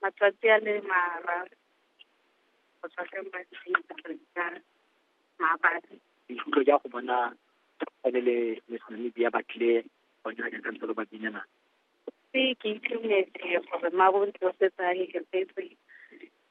matsatsi a le mararo go tswa ka maabane. Boikutlo ja go bona ene le Miss Namibia ba tlile go nna jaaka ntse lo ba binela. Se ke itumetse gore mabo ntse ba setse a iketsetse.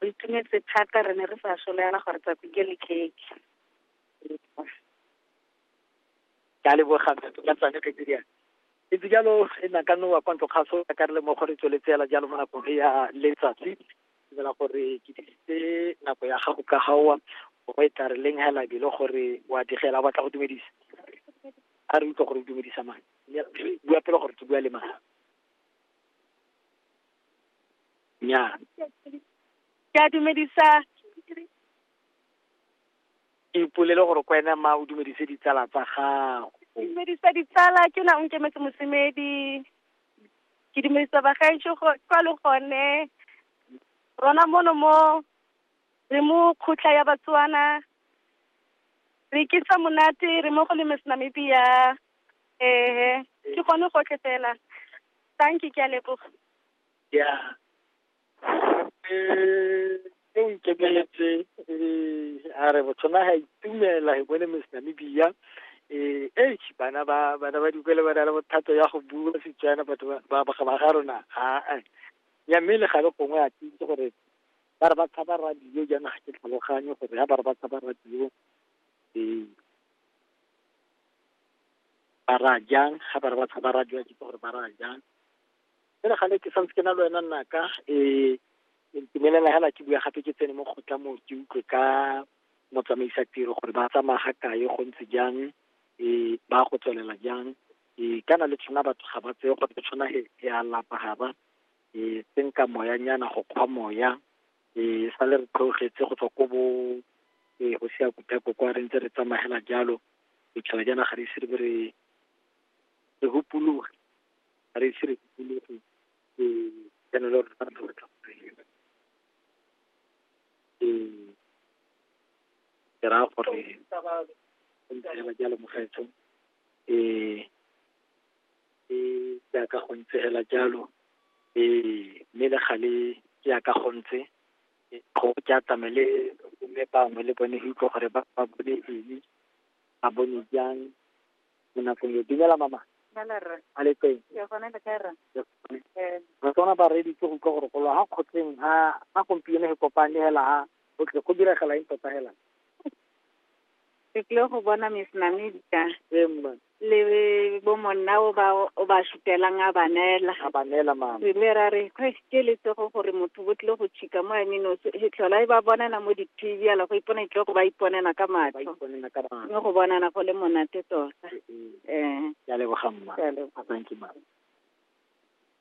Re itumetse thata re ne re sa soleana gore tsatsi ke le keke. ka leboga ka tsane ke tse diana e ntse jalo e na ka nowa kwa ntlo kgaso ka re le mo gore tsweletse yala jalo mo nakong e ya letsatsi tsela gore ke disitse nako ya gago ka gaowa o e tla re leng hela bile gore wa digela batla go dumedisa a re utlwa gore o dumedisa mang bua pele gore ke bua le mang nya ke a dumedisa Ipolele gore kwena ma o dumedise ditsala tsa gago. Dumedisa ditsala ke na o nkemetse mosemedi. Ke dumedisa bagaetsho kwa le gone. Rona mono mo re mo kgotla ya Batswana. Re ke sa monate re mo go le Miss Namibia. Ehe ke gone gotlhe fela. Thank you ke a leboga. Yeah. e ikemeletse a re motho na ga itumela e bone miss namibia eh eh bana ba bana ba dikole ba na le bothata ya go bua setswana batho ba ba ga rona ha ya mme le gale gongwe a tsitse gore ba re ba tshaba radio jaana ga ke tlhaloganye gore ya ba re ba tshaba radio eh ba ra jang ga ba re ba tshaba radio ke gore ba ra jang e re gale ke santse ke na le wena nnaka e ntumelela hela ke bua gape ke tsene mo kgotla mo ke utlwe ka motsamaisa tiro gore ba tsamaya ga kae go ntse jang e ba go tswelela jang e kana le tshwana batho ga ba tseye gore ke tshwana he e a lapa ga ba e tsenka moya nyana go kgwa moya e sa le re tlogetse go tswa ko bo e go sia kutako kwa re ntse re tsamagela jalo e tshwana jana ga re ise re re re hupologe ga re ise re dikologe jaanong le gore fa re tla batla go reela ke raya gore ntsela jalo mogetso um jaaka go ntse fela jalo um mme le gale jaaka go ntse go ke atame le mme bangwe le bone go utlwa gore ba bone eng ba bone jang mo nakong e dumela mama a le teng re tsona ba re ditse go utlwa gore golo ga kgotleng ga ga gompieno he kopane hela ga go tle go diragala eng tota hela ke tlile go bona miss namedika ee mma le bo monna o ba o ba sutelang a banela a ba neela mama re ile ra re "Hei, ke lesego gore motho bo tlile go chika mo eme nosi he tlhola e ba bonana mo di-tv ala go ipona itlile go ba iponela ka matlho mme go bonana go le monate tota um ke a leboga mma Ke a leboga. thank you mma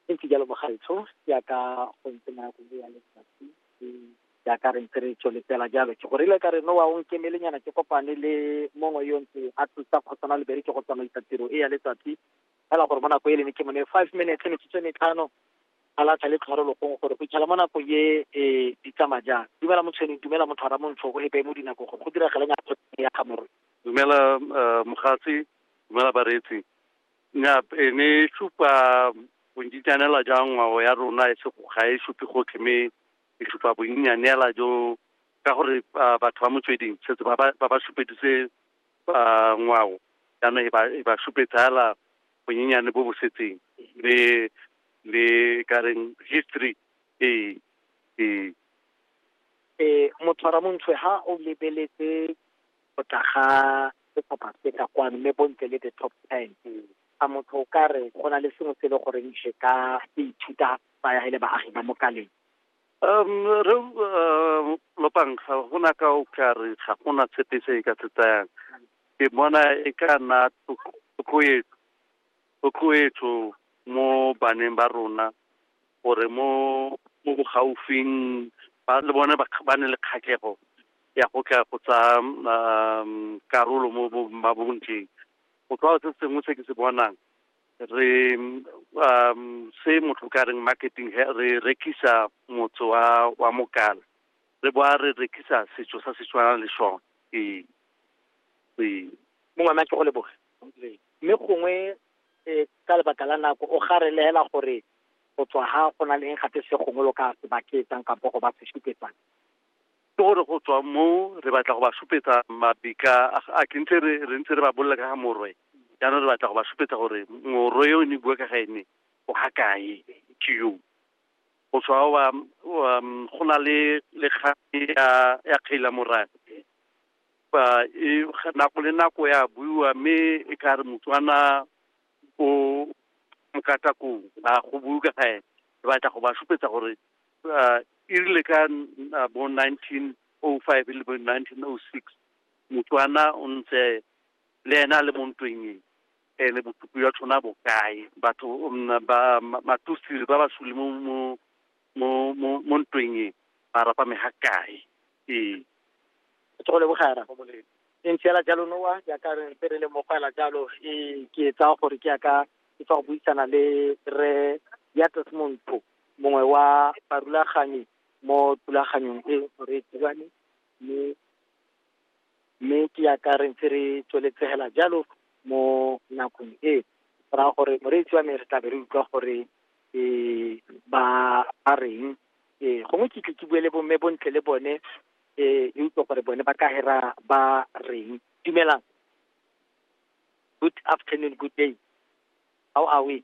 e ntse jalo bogaetsho jaaka go ntse nako le ya letsatsi e jaaka re ntse re tsweletsela jalo ke go rile ka re no wa o nkemelenyana ke kopane le mongwe yo ntse a thusa kgotsana le bereke go tsamaisa tiro e ya letsatsi fela gore mo nako e lene ke mone five minutes metsotso e metlhano a latlha le tlhoro lokong gore go itlhela mo nako ye e di tsamaya jang dumela motshweneng dumela motho ara montsho go epeye mo dinako gore go diragale nyako ya gamoro dumela eh, mogatsi dumela bareetsi nya e ne supa bontsinyanela jang ngwao ya rona e sego ga e supe gotlhe mme e supa bonnyanela jo ka gore ah, batho ba motsweding setse ba ba ba ba supeditse uh, ngwao jaanong e ba e ba supetsala bonyenyane bo bo setseng le le ka reng history ee ee eh motshwara montshwe ha o lebeletse go tla ga setlhopha se ka kwano mme bontle le the top ten a motho o ka re go na le sengwe se e le goreng se ka se ithuta ba ya le baagi ba mokaleng Rre Lopantlha go na ka o ka re ga gona sepe se e ka se tsayang ke bona e ka nna thotloetso mo baneng ba rona gore mo mo bogaufing ba le bone ba ne le kgatlhego ya go tla go tsa karolo mo mabontleng go tlwa se sengwe se ke se bonang re um se motho ka reng marketing re rekisa motso wa wa mokala re boa re rekisa setso sa setswana le sone ee ee mongwe ma ke go leboge mme gongwe eh, ka lebaka la nako o ga re lehela gore go tswa ga go na le eng gape se gongwe lo ka se baketsang kampo go ba se supetsang ke gore go tswa moo re batla go ba supetsa mabika a ke ntse re ntse re ba bolela ka ga morwe jaanong re batla go ba supetsa gore morwe yo ne bua ka ga ene o ga kae ke yo go tswa wa um, go na le lekgane ya ya kgaila morane ba e nako le nako ya buiwa mme e ka re motswana o mokatakong a go bue ka ga ene re batla go ba supetsa gore uh, e rile ka uh, bo 1905 e le bo 1906 motswana o ntse le ena a le mo ntweng e ene bosupi jwa tshwana bokae batho um, ba matusiri ba basuli mo mo mo mo mo ntweng e ba rapa me ga kae ee tsogo le bogara e ntshela jalo noa jaaka re ntse re le mogwela jalo e ke tsaya gore ke yaka ke tsa go buisana le re ya tesmonto mongwe wa barulaganyi mo thulaganyong e re e dirang mme mme ke ya ka re ntse re tsweletsegela jalo mo nakong e go raya gore moreetsi wa me re tlabe re utlwa gore um ba ba reng um gongwe ke tle ke bue le bomme bontle le bone um re utlwe gore bone ba ka hera ba reng dumelang good afternoon good day how are we